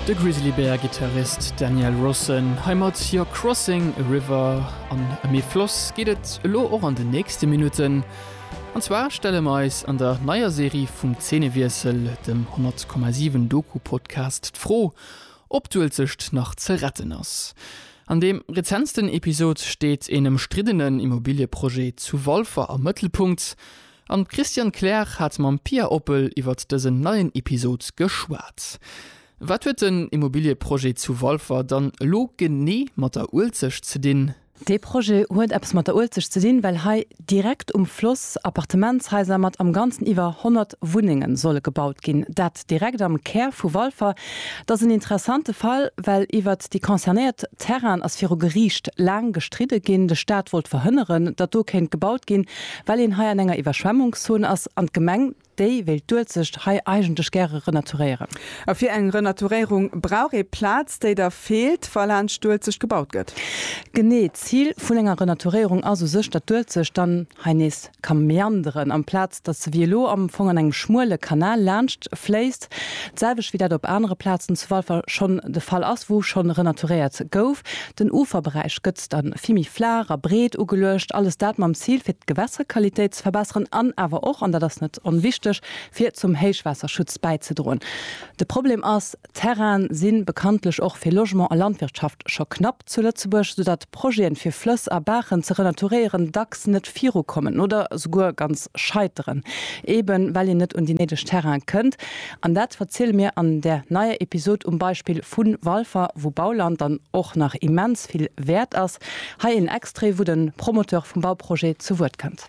De Grizzly Bear Gittarist Daniel Rossen hei mat You're Crossing a River. An ëm ee Floss geet et elo och an den nächste Minutten. An zwar stelle mer eis an der neier Serie vum Zeenewiessel, dem 100,7 Doku-Podcast, d'Fro, ob d'Uelzecht nach ze retten ass. An deem rezentsten Episod steet een ëmstriddenen Immobiliëprojet zu Walfer am Mëttelpunkt. An d'Christiane Kleer hat mam Pia Oppel iwwert dësen neien Episod geschwat. Wat huet den Immobilieprojet zu Walfer dann elo genee mat der Uelzecht ze dinn? Dee Projet huet eppes mat der Uelzecht ze dinn, well hei direkt um Floss Appartementshaiser mat am Ganzen iwwer 100 Wunnenge solle gebaut ginn. Direkt am Kär vu Walfer. Et ass en interessante Fall, well iwwert déi concernéiert Terrainen ass viru Geriicht laang gestridde ginn. De Staat wollt verhënneren, datt do kéint gebaut ginn, well een hei an enger Iwwerschwemmungszon ass an d'Gemeng, déi wéilt d'Uelzecht hei eigentlech gäre renaturéieren. A fir eng Renaturéierung brauch ee Plaz, déi da feelt, wa laanscht d'Uelzecht gebaut gëtt. Genee. D'Zil vun enger Renaturéierung ass u sech, datt d'Uelzecht dann hei nees kann meanderen, amplaz datt se wéi elo am Fong an engem schmuele Kanal laanscht fléisst, d'selwecht wéi dat op anere Plazen zu Walfer schonn de Fall ass, wou schonn renaturéiert gouf. Den Uferberäich gëtt da vill méi flaach a breet ugeluecht, alles dat mam Zil, fir d'Gewässerqualitéit ze verbesseren an awer och, an dat ass net onwichteg, fir zum Héichwaasserschutz bäizedroen. De Problem ass. Terraine si bekanntlech och fir Logement a Landwirtschaft scho knapp zu Lëtzebuerg, soudatt Projeten, fir Flëss a Baachen ze renaturéieren, dacks net virukommen oder souguer ganz scheiteren, eben well een net un déi néideg Terraine kënnt. An dat verziele mir an där neier Episod um Beispill vu Walfer, wou Bauland dann och nach immens vill wäert ass. Hei een Extrait, wou de Promoteur vum Bauprojet zu Wuert kënnt.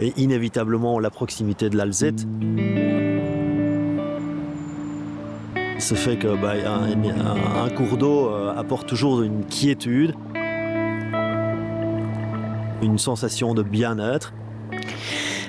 Et inévitablement à la proximité de l'Alzette. Ce fait que bah, un, un cours d'eau apporte toujours une quiétude, une sensation de bien-être.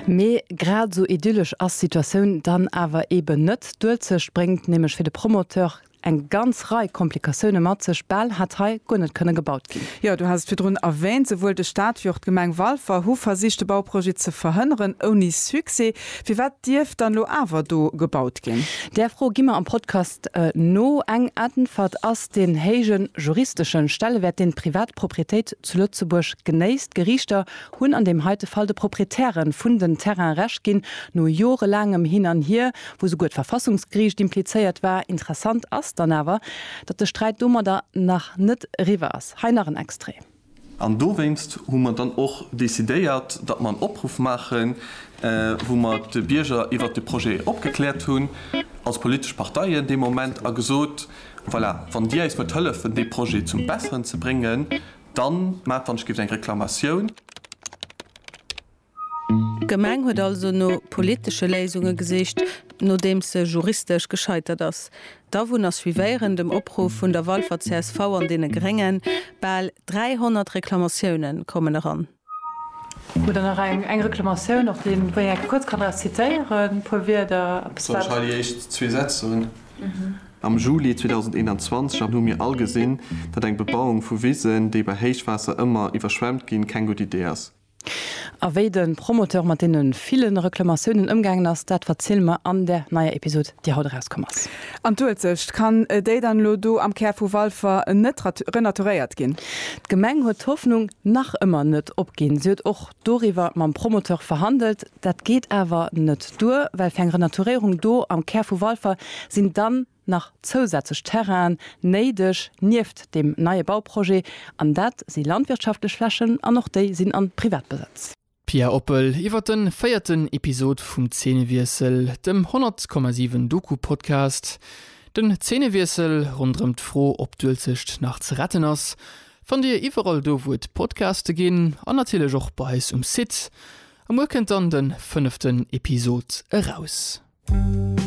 Mee grad esou idyllesch ass d'Situatioun dann awer eeben net. D'Uelzecht bréngt nämlech fir de Promoteur eng ganz Rei Komplikatioune mat sech, bal hätt hei guer net kënne gebaut ginn. Jo, du has et virdrun erwähnt, souwuel de Staat wéi och d'Gemeng Walfer hu versicht de Bauprojet ze verhënneren, ouni Succès. Firwat dierf dann elo awer do gebaut ginn? Där Fro gi mer am Podcast no eng Äntwert. Ass den héije juristeschen Stellewäert, deen d'Privatproprietéit zu Lëtzebuerg genéisst, d'Geriichter hunn an deem heite Fall de Proprietären vun den Terraine Recht ginn, no jorelaangem Hin an Hier, wou souguer d'Verfassungsgeriicht implizéiert war. Interessant ass dann awer, datt de Sträit domadder nach net eriwwer ass. Hei nach en Extrait. An dowéinst hu mer dann och decidéiert, datt mer en Opruff maachen, wou mer d'Bierger iwwert de Projet opgekläert hunn, als politesch Parteien dee Moment, a gesot, Voilà, wann Dir eis wëllt hëllefen, dee Projet zum Besseren ze bréngen, dann maacht, wann ech géif, eng Reklamatioun. D'Gemeng huet also no politesche Léisunge gesicht, nodeems se juristesch gescheitert ass. D'Awunner suivéieren, dem Opruff vun der Walfer csv an deene Gréngen, bal 300 Reklamatioune kommen eran. Hutt der nach eng eng Reklamatioun, op déi wou een enke kuerz kann eppes zitieren, e puer Wierder, eppes wat. Soll ech hei déi éischt zwee Sätz soen? Am Juli 2021 an hu mir all gesinn, datt eng Bebauung vu Wisen, déi bei Héichwaasser ëmmer iwwerschwemmt ginn, keng gutt Idee ass. A wéi de Promoteur mat deene ville Reklamatiounen ëmgaangen ass, dat verziele mer an der neier Episod, déi haut erauskomm ass. An d'Uelzecht, kann déi dann elo do am Kär vu Walfer net renaturéiert ginn? D'Gemeng huet d'Hoffnung nach ëmmer net opginn. Si huet och doriwwer mam Promoteur verhandelt. Dat geet awer net duer, well fir eng Renaturéierung do am Kär vu Walfer sinn dann. nach zousätzlech Terrainen néideg nieft deem neie Bauprojet, an dat si landwirtschaftlech Flächen an och déi sinn a Privatbesëtz. Pia Oppel iwwer den véierten Episod vum Zeenewiessel, dem 100,7 Doku-Podcast. Den Zeenewiessel ronderëm d'Fro, ob d'Uelzecht nach ze retten ass, fannt Dir iwwerall do, wou et Podcaste ginn an natierlech och bei eis um Site. A muer kënnt dann de fënneften Episod eraus.